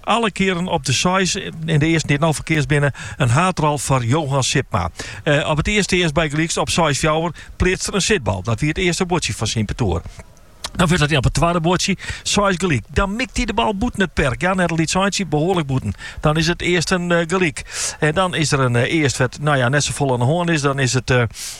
Alle kearen op de seis en de earsten dy't no ferkeatst binne, in haadrol foar Johan Sipma. Op it earste earst bygelyks op seis fjouwer pleatst er in sitbal. Dat wie it earste buordsje fan syn partoer. Dan wurdt it op it twadde buordsje seis gelyk. Dan mikt hy de bal bûten it perk, ja net in lyts eintsje, behoarlik bûten. Dan is it earsten gelyk. Dan is der in earst wêr't no ja net safolle oan de hân is. Dan is it.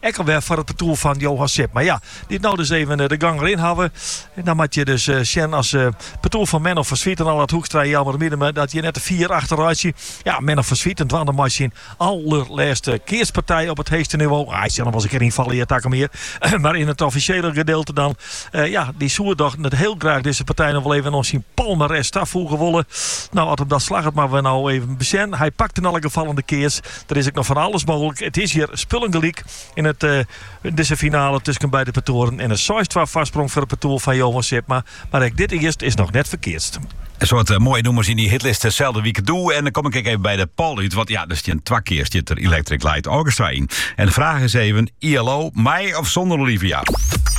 Ek al wer foar it partoer fan Johan Sipma. Ja, dy't no dus even de gong deryn hawwe. En dan moat je dus sjen as partoer fan Menno van Zwieten Allard Hoekstra Jelmer Miedema datst hjir net te fier achter rekkest. Ja, Menno van Zwieten dwaande mei syn allerlêste keatspartij op it heechste niveau. Hy sil noch wel eens in kear ynfalle hjir takom jier. Mar yn it offisjele gedeelte dan. Ja, dy soe doch net hiel graach dizze partij noch wol even oan syn palmarès tafoege wolle. No, as him dat slagget moatte we no even besjen. Hy pakt yn alle gefallen de keats. Der is ek noch fan alles mooglik. It is hjir spullen gelyk yn dizze finale tusken beide partoaren en in seis-twa foarsprong foar it partoer fan Johan Sipma. Mar ek dit earst is noch net ferkeatst. In soad moaie nûmers yn dy hitlist deselde wike doe. En dan kom ik ek even by de poll út, want ja, der stjin twa kear stiet der Electric Light Orchestra yn. En de fraach is even, ELO, mei of sonder Olivia?